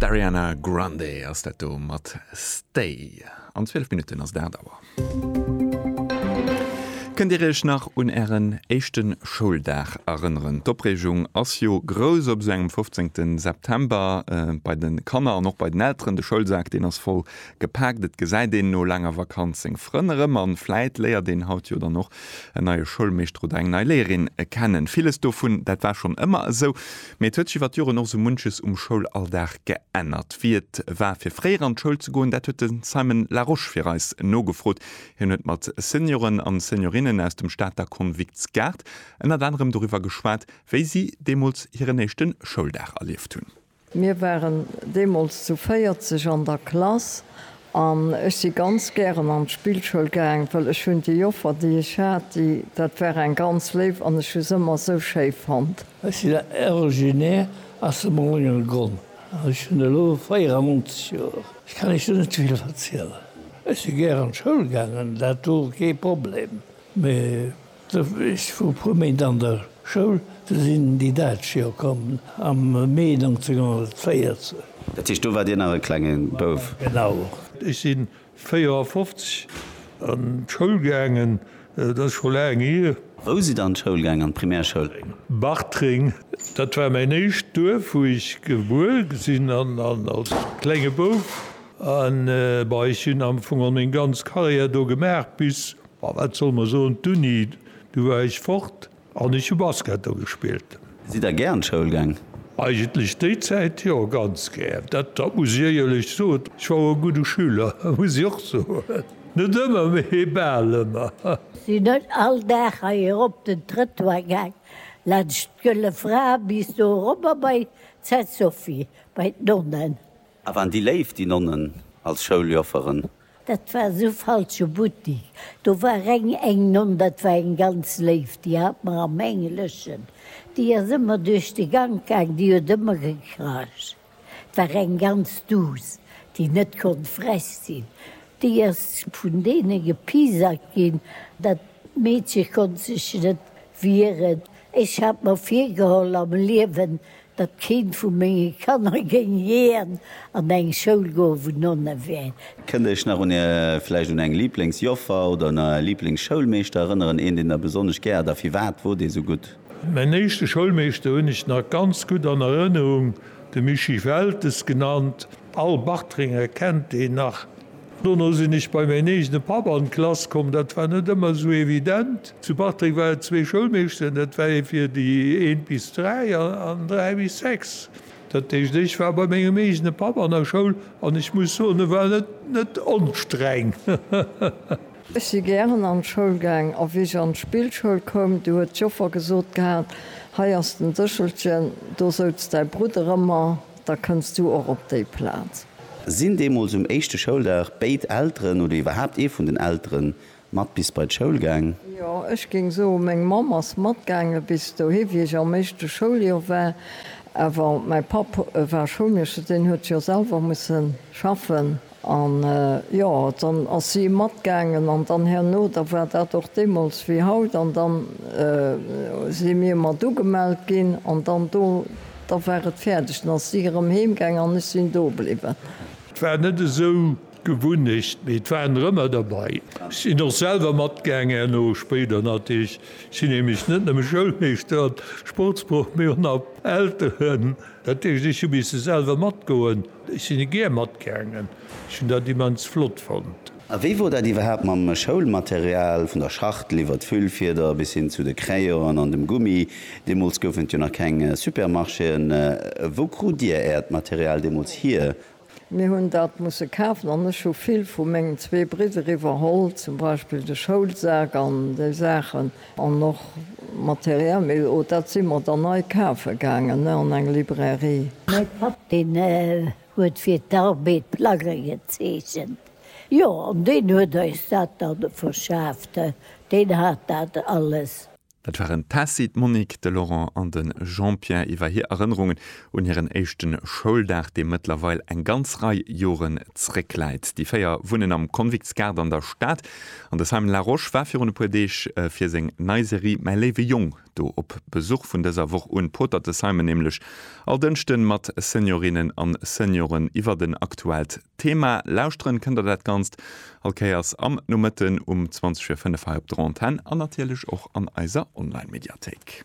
D'Ariana Grande ass dat do mat Stay. An 12 Minutten ass 8 Auer. Kënnt Dir Iech nach un Ären éischte Schouldag erënneren? D'Opreegung ass jo grouss op esou engem 15. September. Bei de Kanner an och bei den Elteren. De Schoulsak, deen ass voll gepaakt. Et gesäit een no laanger Vakanz seng Frënn erëm. An vläit léiert een haut jo dann och en neie Schoulmeeschter oder eng nei Léierin kennen. Villes dovun, dat war schonn ëmmer esou. Mee et huet sech iwwer d'Joren och sou munches um Schoulalldag geännert. Wéi et war fir fréier an d'Schoul ze goen, dat huet de Simon Laroche fir eis nogefrot. Hien huet mat Senioren an Seniorinnen aus dem Stater Konviktsgaart ënnert anerem doriwwer geschwat, wéi si deemools hiren éischte Schouldag erlieft hunn. Mir waren deemools zu 40 an der Klass An ech si ganz gären an d'Spillschoul gaang, well ech hunn déi Joffer, déi ech hat, déi, dat war eng ganz léif an ech hu se ëmmer esou schéi fonnt. Ech sinn originaire aus dem Oléngergronn an ech hunn elo 94 Joer. Ech kann Iech do net vill verzielen. Ech si gär an d'Schoul gaangen, dat wor kee Problem, mee. De Wénsch vu puer Méint an der Schoul ze sinn, déi dat Joer komm am Mee 1940. Dat heescht, do war Dir nach e klenge Bouf? Genau. Ech si 54 an d'Schoul gaangen, dat ass scho laang hier. Wou sidd Der an d'Schoul gaangen, an d'Primärschoul? Bartreng. Dat war mäin éischt Duerf, wou ech gebuer gesinn an als klenge Bouf. An, bon, ech hunn am Fong geholl meng ganz Karriär do gemaach bis Ma wat soll mer soen, d'Uni, du war ech fort an ech hu Basket do gespillt. Sidd der gär an d'Schoul gaang? Eigentlech déi Zäit jo, ganz gär. Dat muss ech éierlech soen. Ech war och e gudde Schüler, muss ech och soen. Net ëmmer, mee bal ëmmer. Sinn ech all Dag hei erop den Trëttoir gaang, laanscht d'Gëlle Fra bis do erobber bei d'Sainte Sophie, bei d'Nonnen. A waren déi léif, déi Nonnen, als Schouljofferen? Dat war esou falsche Buttik, do war reng eng Nonn, dat war eng ganz léif, déi hat mer am Engleschen, déi ass ëmmer duerch de Gank gaang, déi huet ëmmer gekracht, et war eng ganz duuss, déi net konnt frech sinn, déi ass vun deene gepiesackt ginn, dat Meedche konnt sech net wieren. Ech hat mer virgeholl am Liewen, datt keent vu menge Kanner géing jiän an eng Schoul goen, wou Nonne wären. Kënnt Iech nach un Är, vläicht un eng Lieblingsjoffer oder un Är Lieblingsschoulmeeschter erënneren? Een, deen Der besonnesch gär hat a firwat wor dee sou gutt? Mäin éischte Schoulmeeschter hunn ech nach ganz gutt an Erënnerung, de Mischii Weltes genannt. All Bartrenger kennt deen nach. Dono sinn ech bei mäin eegene Papp an d'Klass komm. Dat war net ëmmer esou evident. Zu Bartreng war et zwee Schoulmeeschteren, dat war ee fir déi eent bis dräi an dräi bis sechs. Dat heescht, ech war bei mengem eegene Papp an der Schoul an ech muss soen, e war net onstreng. Ech si gären an d'Schoul gaang a wéi ech an d'Spillschoul koum, du huet d'Joffer gesot gehat, Hei ass den Séchelchen, do souz däi Brudder ëmmer. Da kënns du och op déi Plaz. Sinn deemools um éischte Schouldag béid Elteren oder iwwerhaapt ee vun den Eltere mat bis bei d'Schoul gaang? Jo, ech géing soen, meng Mamm ass matgaange bis dohi, wéi ech am éischte Schouljoer war. Awer mäi Papp war Schoulmeeschter, deen huet jo selwer musse schaffen An, jo, dann ass si matgaangen, an dann herno, da war dat och deemools wéi haut, an dann si mir mat ugemellt ginn, an dann do, da war et fäerdeg, dann ass si erëm heemgaangen an ech sinn do bliwwen. Et war net esou d'Gewunnecht, mee et waren der ëmmer derbei. Ech sinn och selwer matgaangen herno, spéider natierlech. Ech sinn nämlech net nëmme Schoulmeeschter an Sportsproff, mee och nach Elteren, dat heescht, ech hu misse selwer matgoen. Ech sinn e gär matgaangen. Ech hunn dat immens flott fonnt. A wéi wor dat iwwerhaapt mam Schoulmaterial, vun der Schachtel iwwert d'Füllfieder bis hin zu de Crayonen an dem Gummi? Deemools goufen et jo nach keng Supermarchéen. Wou krut Dir Äert Material deemools hir? Mir hunn dat musse kafen an ech hu vill vu mengen zwee Bridder iwwerholl, zum Beispill de Schoulsak an déi Saachen. An och Material, mee oh, dat si mer dann nei kafe gaangen an eng Librairie. Mäi Papp, deen huet fir d'Arbed Plagge gezeechent, jo, an deen huet eis dat da verschaaft, deen hat dat alles. Dat waren d'Tessy, d'Monique, de Laurent an de Jean-Pierre iwwer hir Erënnerungen Un hiren éischte Schouldag, dee mëttlerweil eng ganz Rei Joren zréckläit. Déi véier wunnen am Convictsgaart an der Stad an de Simon Larosche war virun e puer Deeg fir seng nei Serie Mäi léiwe Jong do op Besuch. Vun dëser Woch un potert de Simon nämlech all Dënschden mat Seniorinnen an Senioren iwwert en aktuellt Thema. Lauschteren kënnt der dat Ganzt all Kéiers am Nomëtten um 20 vir 5 hei op der Antenn an natierlech och an eiser Online-Mediathéik.